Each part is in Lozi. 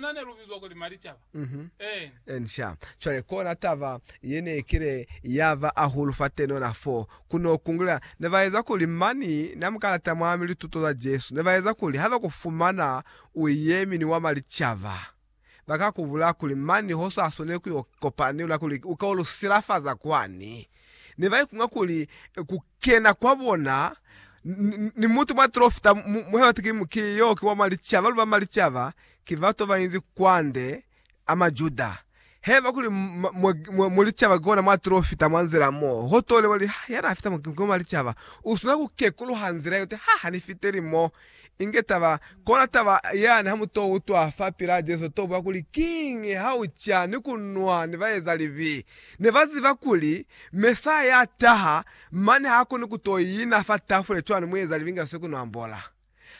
Na ne lu bizwa kuli Malicaba. Eena. Eensha. Cwale, kona taba ye ne kile ya ba ahulu fatenona fo, ku no kungulela, ne ba eza kuli mani na mu kalata mwami lituto za Jesu, ne ba eza kuli ha ba ku fumana u yemi ni wa Malicaba, ba ka ku bulaya kuli mani ho sa swaneli ku yo kopana ni luna kuli u ka yo lu silafaza kwani. Ne ba ikunga kuli ku. kena kwa bona, ni mutu mwa Trofta, muhe wa Tikimu, ki yo ki wa mwa licaba, lu ba mwa licaba, ki bato ba inzi kwande, a Majuda. He ba kuli, Mwa, mwa, mwa licaba, ki kona mwa Trofta, mwa nzila mo, ho tole, ba li, Ha, yana a fita mo, ki wa mwa licaba. U swanela ku kekuluha nzila yote. Ha, ha ni fiteli mo. Inge taba, kona taba yani ha mu to utwa fa pila Jesu to bwa kuli, Kiñi ha u ca ni ku nwa ni baeza libi? Ne ba ziba kuli Mesaya ya taha mane ha koni ku to ina fa tafule cwani mueza libi nga se ku no ambola?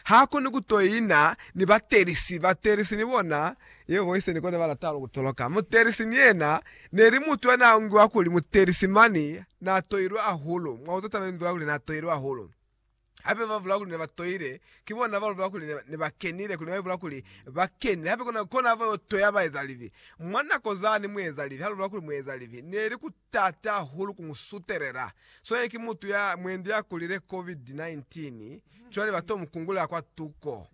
Ha koni ku to ina ni batelisi. Batelisi ni bona, ye voice ni kone ba lata hahulu ku toloka. Mutelisi ni yena, ne li mutu ya n'a ongiwa kuli mutelisi mane n'a toilwe hahulu. Mwa utwa taba ye ni nzula kuli n'a toilwe hahulu. hape ba bula kuli ne ba toile ki bona ba lubela kuli ne ba kenile kuli ne ba bula kuli ba kenile hape kona kona hava yo toya ba eza libi mwa nako zani mu eza libi ha lubela kuli mu eza libi neli ku tata hahulu ku mu sutelela so ye ki mutu ya mwendi ya kulile COVID 19 cwale ba to mu kungulela kwa tuko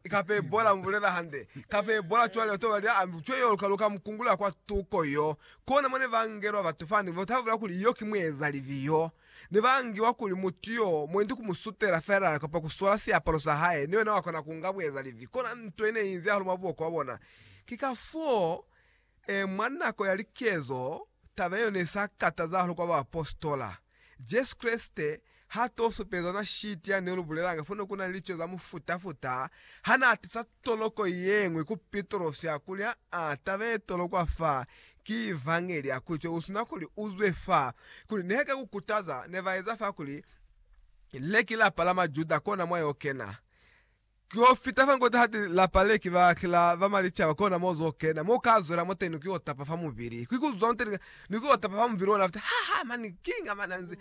kape bola mubulela hande kape bola cwale ba to ba lia ambi cwe yo ka luka mu kungulela kwa tuko yo kona mone ba ngelwa batu fani bo ta bula kuli yo ki mu eza libi yo Ne ba ngiwa kuli mutu yo mwendi ku mu sutela feela kapa ku swala siapalo sa hae, ni wena wa kona ku nga bueza livi. Kona nto ye ne inzi hahulu mwa buboko bwa bona. Ki kafoo, e, mwa nako ya likezo, taba ye yo ne i sa kataza hahulu kwa baapositola. Jesu Kreste ha to supeza ona shiti ya ne lu bulelanga fo ne ku na ni lico za mufuta-futa ha na atisa. Toloko yeñwi ku Pitrosi ya kuli, Aa, taba ye tolokwa fa ki Evangeli ya Kristo yeusina kuli uzwe fa, kuli nehe ka kukutaza ne ba eza fa kuli leki lapa la Majuda kona mwa yo kena. Ki yo fita fa nkota hati lapa leki ba kila ba malicaba kona mo zo kena, mo ka zwela moteni ki yo tapa fa mubili. Ki kuzwa moteni ka ni ku tapa fa mubili ona futi ha ha mani king amani anzi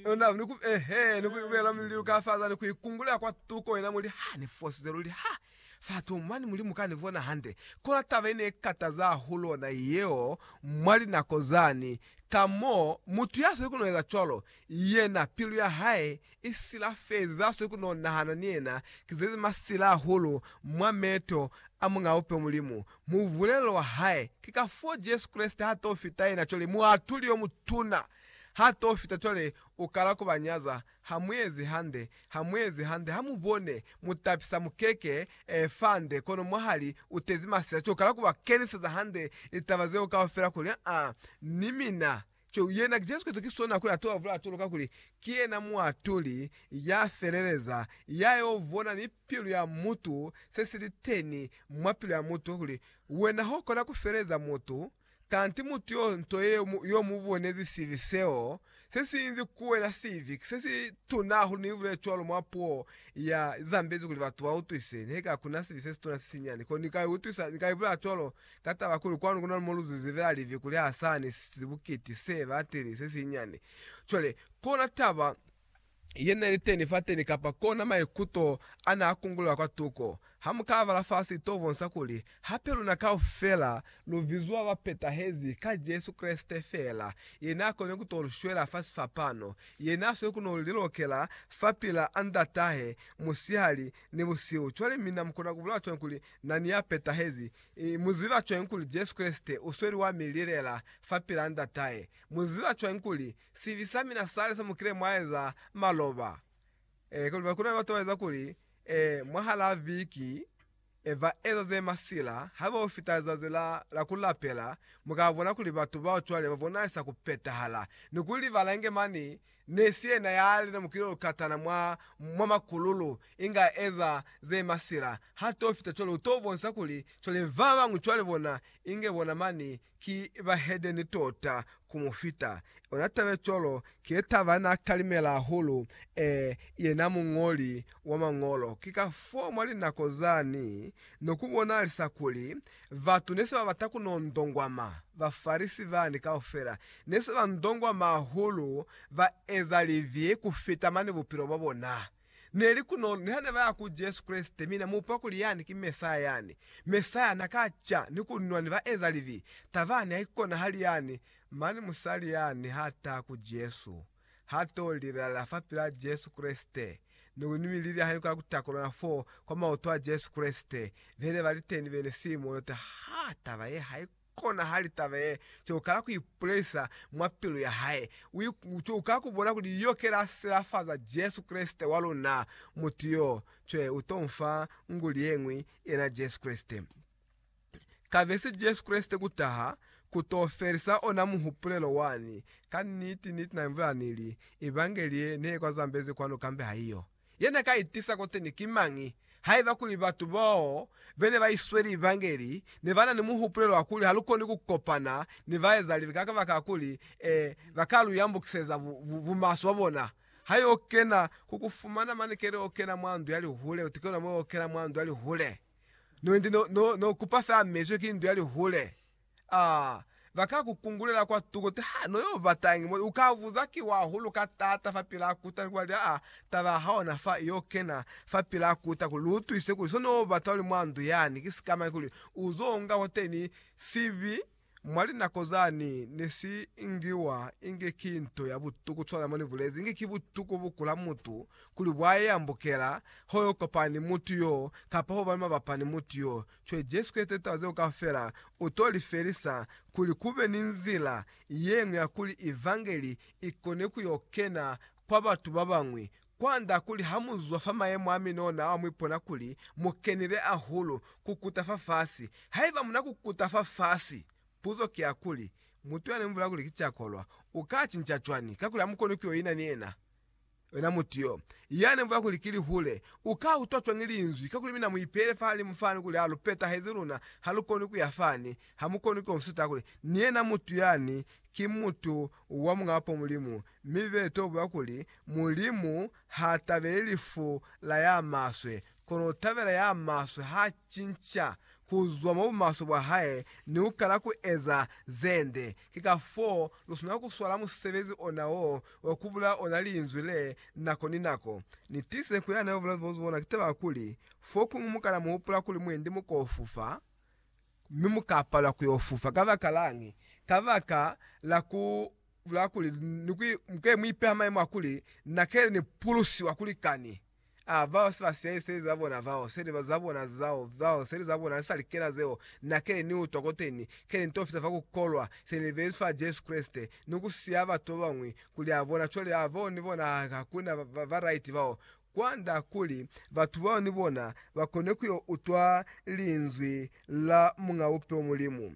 ona ni ku ehe ni ku bela mililu ka fa zani ku ikungula kwa tuko ina muli ha ni fosize luli ha fa to mani mulimu ka ni bona hande kona taba ine ikataza hahulu ona yeo mwa linako zani ka mo mutu ya sweli ku no eza cwalo Yena pilu ya hae i silafezi za swe ku no nahana ni yena ki zezi masila hahulu mwa meeto a Muñ'a Bupe Mulimu. Mubulelo wa hae ki ka fo Jesu Kreste ha to fita yena cwale muatuli yo mutuna. Ha to fita cwale u kala ku ba nyaza, Ha mu ezi hande, ha mu ezi hande, ha mu bone, mu tapisa mukeke eh, fa nde, kono mwahali u tezi masila. Cwale u kala ku ba keniseza hande litaba zeo kaufela kuli, Ah, ni mina Ceu yena Jesu Kristo ki sona kuli atoa vulatolo kakuli ki yena Muatuli ya feleleza, ya yo vona ni pilu ya mutu se si li teni mwa pilu ya mutu, kuli wena ho kona ku feleza mutu, kanti mutu yo nto ye yo mu bonezi sibi seo se si inzi ku wena sibi se si tuna hahulu. Ni bulele cwalo mwa puo ya zambezi kuli batu ba utwise, nihaiba kuna sibi se si tuna se si nyani ko ni ka i utwisa, ni ka i bulela cwalo. Ka taba kuli kwanu kuna ni moluzizi vela livi kuli ha sani sibukiti se bateni se sinyani, cwale kona taba ye ne li teni fateni kapa kona maikuto a ne a kungulela kwa tuko. Ha mu ka bala fasi i to bonsa kuli hape luna kaufela lu bizwa bapetahezi ka Jesu Kreste fela, ye n'a koni ku to lu shwela fa sifapano, ye n'a swe ku no lilokela fapil'a Ndat'ahe musihali ni busihu. Cwale mina mu kona ku bulela cwañi kuli Na ni ya petahezi. Mu ziba cwañi kuli Jesu Kreste u sweli wa mi lilela fapilaa Ndatahe? Mu ziba cwañi kuli sibi sa mina sale sa mu kile mwa eza maloba? E, kono ku na ni batu ba eza kuli, e, mwahalaa viki, e, ba eza ze masila, haiba ho fita lizazi la, la ku lapela, mu ka bona kuli batu bao cwale ba bonalisa ku petahala, ni ku libala inge mane Ne si yena ya li na mukilolo katana mwa, mwa makululu, inga eza ze masila. Ha to fita cwale, u to bonsa kuli, cwale, ba bañwi cwale bona, inge bona mani ki bahedeni tota ku mu fita. Ona taba ye cwalo ki ye taba na talimela hahulu, ee, yena muñoli wa Mañolo. Ki kafoo mwa linako zani, no ku bonalisa kuli Batu ne se ba bata ku no ndongwama. Bafarisi bani kaufela ne se ba ndongwama hahulu, ba eza libi ku fita mane bupilo bwa bona. Ne li kunolo niha ne ba ya ku Jesu Kreste mi na mupa kuli yani ki Mesaya yani. Mesaya na ka ca ni ku nwa ni baezalibi. Taba yani haikonahali yani, mane musali yani ha taha ku Jesu. Ha to lilala fapil'a Jesu Kreste, ni ku nwi lili hali kwa kutakulana fo kwa maoto a Jesu Kreste, be ne ba li teni bene Simoni uta, Ha taba ye hai konahali taba ye co kala ku ipulelisa mwa pilu ya hae. U co kala ku bona kuli yo ke la silafaza Jesu Kreste wa luna. Mutu yo, cwe, u to nfa nguli ye ñwi, yena Jesu Kreste. Kabesi Jesu Kreste ku taha, ku to felisa ona muhupulelo wani. Ka niti, niti Na ibula Ni li, Evangeli ye, ne kwa zambezi kwanu kambe ha iyo. Ye Na ka itisa koteni ki mañi? Haiba kuli batu bao be ne ba isweli Evangeli ne ba na ni muhupulelo wa kuli ha lu koni ku kopana ni baezalibi ka kabaka kuli, e, ba ka lu yambukiseza bu, bu, bumaswe bwa bona. Ha yo kena, ku ku fumana mane keli o kena mwa ndu ya lihule, uti ke ona mo yo kena mwa ndu ya lihule. No endi no, no, no kupa fela mezwi ki ndu ya lihule. Ah, ba ka ku kungulela kwa tuko te, Ha, no yo batañi moli? U ka buza, Ki wa hulu ka taata fa pilaa kuta, ni ku ba li, Aa, taba ya hao na fa i yo kena fa pilaa kuta, kuli lu utwise kuli so no bata uli mwa ndu yani, ki sikamañi, kuli u zo nga kwateni sibi Mwa linako zani ne si ingiwa inge ki nto ya butu ku swana mo ni bulezi inge ki butu ku bukula mutu kuli bwa e ambukela, ho yo kopana ni mutu yo, kapa ho ba ni mabapa ni mutu yo. Cwale Jesu Kreste litaba zeo kaufela u to li felisa kuli ku be ni nzila ye ñwi ya kuli Evangeli i kone ku yo kena kwa batu ba bañwi Kwanda kuli ha mu zwa fa mayemo a minona ao mu ipona kuli mu kenile ahulu kukuta fafasi. Haiba mu na kukuta fafasi, puzo ki ya kuli, Mutu ya ne mu bulela kuli ki cakolwa, u ka cinca cwani? Kakuli ha mu koni ku yo ina ni yena. Yena mutu yo, ya ne mu bulela kuli ki lihule, u ka utwa cwani linzwi? Kakuli mina mu ipeile fahalimu fani kuli ha lu petahezi luna ha lu koni ku ya fani. Ha mu koni ku yo mu suta kuli, Ni yena mutu yani ki mutu wa Muñaa Upo Mulimu Mi be to buya kuli, Mulimu ha tabeli lifu la ya maswe, kono u tabela ya maswe ha cinca ku zwa mwa bumaswe bwa hae ni ku kala ku eza ze nde. Ki ka foo lu swanela ku swala musebezi ona wo wa ku bulaya ona Linzwi le nako ni nako. Ni tiise ku ya na yo bula zwa zona ki taba ya kuli, fokuñwi mu kana mu hupula kuli mwendi mu ko fufa, mi mu ka palelwa ku yo fufa. Kabakalañi? Kabaka la ku la kuli ni ku muke mu ipeha maimo a kuli na kele ni pulusiwa kuli kani a vao se ba siyaile seli za bona vao seli ba za bona zao zao seli za bona ni sa likena zeo na kele ni utwa koteni kele ni to fita fa ku kolwa se ni libelezi fa Jesu Kreste ni ku siya batu ba bañwi kuli a bona cwale a vao ni bona ha ha kuna ba ba right vao kwanda kuli batu bao ni bona ba kone ku yo utwa linzwi la Muñ'a Bupilo Mulimu.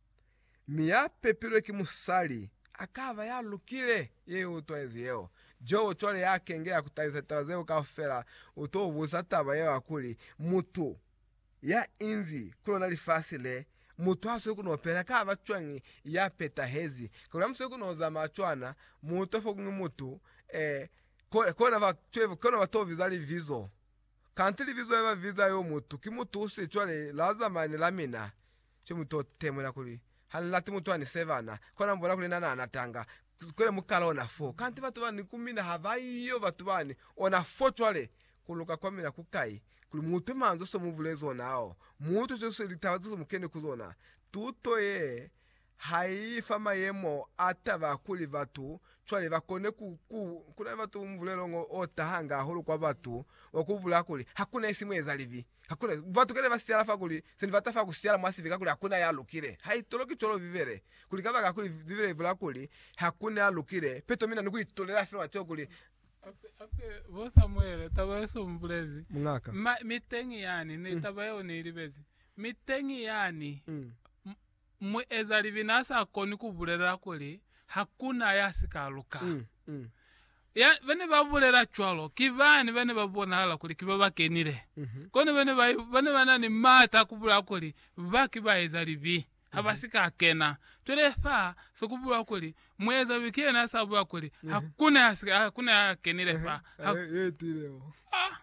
mi ya pepilwe ki musali a ka ba ya lukile. Ye i utwezi yeo. Jobo cwale ya kenge ya ku talisa litaba zeo kaufela, u t'o buza taba yeo ya kuli, Mutu ya inzi ku lona lifasi le, mutu ha swe ku n'o pela, ka ba cwañi ya petahezi? Kakuli ha mu swe ku n'o zamaya cwana, mu utwa fo kuñwi mutu, eh, kona ba, kona ba t'o biza libizo. Kanti libizo le ba biza yo mutu, ki mutu u si cwale la zamaya ni la mina. Ki mu to temula kuli, Ha ni lati mutu a ni sebana, kona mu bona kuli na na na tanga. Cwale mu kala ona foo. Kanti batu ba ni ku mina ha ba yo, batu ba ni ona foo. Cwale, ku luka kwa mina ku kai? Kuli mu utwe manzwi so mu bulezi ona ao. Mu utwe cwale so litaba zeso mu keni ku zona. Tuto ye, ha i fa mayemo a taba kuli batu cwale ba kone ku, ku, kuna ni batu, mubulelo ngo o tahanga hahulu kwa batu, wa ku bulaa kuli, Hakuna isi mu eza libi. Hakuna batu kale ba siala fa kuli, se ni bata fa ku siala mwa sibi kakuli hakuna ya lukile. Haitoloki cwalo Bibele, kuli kabaka kuli Bibele ibula kuli, Hakuna ya lukile. Peto mina ni ku itolela fela mwa ceo kuli, Hape, hape, bo Samuele, taba ye su mbulezi. Muñaka. Ma, mi teñi yani, ne, taba yeo ni i libezi. Mi teñi yani. M, Muezalibina sa koni ku bulela kuli hakuna ya si ka luka. Ya bane ba bulela cwalo ki bani bane ba bonahala kuli ki ba ba kenile. Kono bane ba, bane ba na ni maata a ku bulela kuli ba ki baezalibi, ha ba si ka kena. Cwale fa se ku bulwa kuli, muezalibi ki yena ya sa bulela kuli, Hakuna ya si ka, hakuna ya kenile fa. Ha, ah.